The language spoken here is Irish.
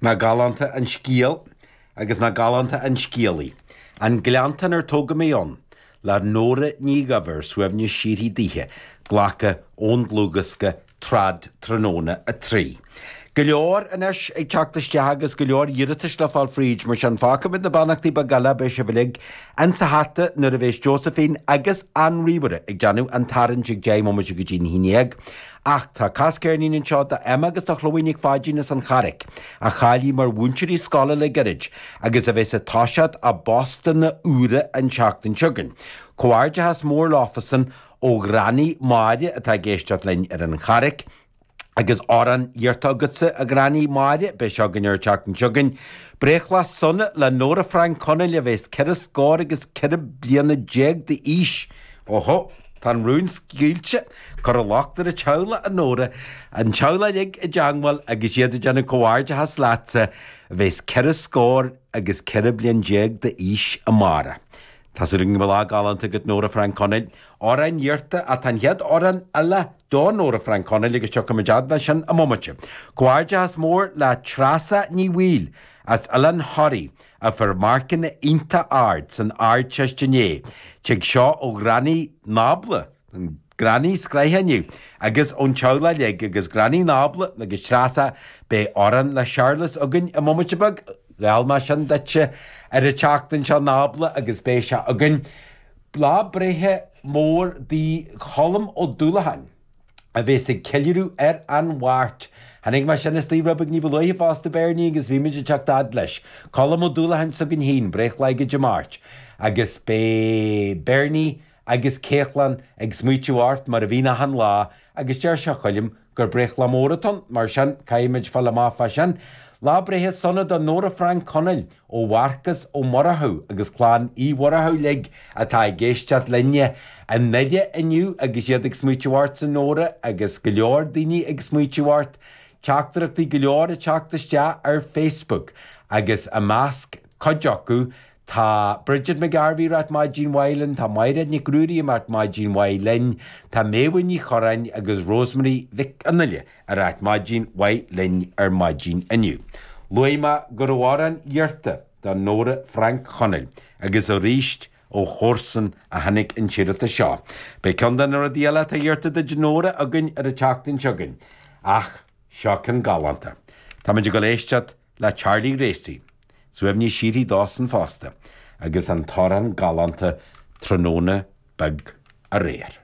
Nach galánta an scéal agus nach galánta an scéalaí. An gleanntán ar tógadh mé ann, le Nóra Ní Dhuibhir suaimhneas síoraí daoithe, glactha ón dlúthdhiosca Trad Tráthnóna 3. Go leor anois ag teacht isteach agus go leor iarratais le fáil fríd, mar sin fágfaimid na beannachtaí beaga eile, beidh sibh uilig insa hata nuair a bheas Josephine agus an ríomhaire ag déanamh an tarraingt ag deich mbomaite go dtí an haon déag. Ach tá cas ceirnín anseo d'Emma agus do Chloe Nic Pháidín as an Charraic, a cháiligh mar mhúinteoirí scoile le gairid, agus a bheas ag toiseacht a bpostanna úra an tseachtain seo chugainn. Comhghairdeachas mór leofasan ó Ghranny Mháire atá ag éisteacht linn ar an Charraic, agus amhrán iarrtha agatsa, a Ghranny Mháire, beidh seo againn ar an tseachtain seo chugainn, breithlá sona le Nóra Frainc Chonaill, a bheas ceithre scór agus ceithre bliana déag d'aois. Ohó, tá an rún scaoilte! Cuireadh lucht an teaghlaigh a Nóra, an teaghlach uilig i dteangmháil agus iad ag déanamh comhghairdeachas leatsa a bheas ceithre scór agus ceithre bliain déag d'aois, amárach. Tá súil agam go bhfuil lá galánta agat Nóra Frainc Chonaill. Amhrán iarrtha, ach tá an chéad amhrán eile do Nóra Frainc Chonaill agus tiocfaimid fhad leis sin i mbomaite. Comhghairdeachas mór le Treasa Ní Bhaoill as Oileán Thoraí a fuair marcanna iontach ard san Ardteist inné. Tig seo ó Ghranny Nábla. na grannies gnaitheach inniu agus ón teaghlach uilig agus Granny Nábla agus Treasa beidh amhrán le Charles againn i mbomaite beag, gheall mé sin duitse ar an tseachtain seo Nábla agus beidh sé againn. Lá breithe mór do Cholm Ó Dúlacháin a bheas ag ceiliúradh ar an Mháirt. Chonaic mé sin istigh romham ní ba luaithe fosta Bernie agus beimid ag teacht fhad leis. Colm Ó Dúlacháin s'againn féin, breithlá aige Dé Máirt, agus beidh Bernie, agus Caitlin ag smaoitiú ort mar a bhíonn achan lá agus deir sé a Choilm gur breithlá mór atá ann mar sin caithfimid fáil amach fá sin. Lá breithe sona do Nóra Frainc Chonaill ó Mharcas Ó Murchú agus Clann Uí Mhurchú uilig atá ag éisteacht linn i nDoire inniu agus iad ag smaoitiú ort a Nóra agus go leor daoine ag smaoitiú ort. Teachtaireachtaí go leor ag teacht isteach ar Facebook agus i measc cuid acu Tá Bridget McGarvey ag rá maidin mhaith linn, tá Maighréad Nic Ruairí ag rá maidin mhaith linn, tá Méabha Ní Chorráin agus Rosemary Mhic an Fhile ag rá maidin mhaith linn ar maidin inniu. Luaigh mé go raibh amhrán iarrtha do Nóra Frainc Chonaill agus arís ó chomharsan a tháinig an t-iarratas seo. Beidh ceann de na rudaí eile atá iarrta duit Nóra againn ar an tseachtain seo chugainn. Ach seo ceann galánta. Táimid ag dul éisteacht. le Charlie Ghracie, suaimhneas síoraí dósan fosta, agus an t-amhrán galánta 'Tráthnóna Beag Aréir'.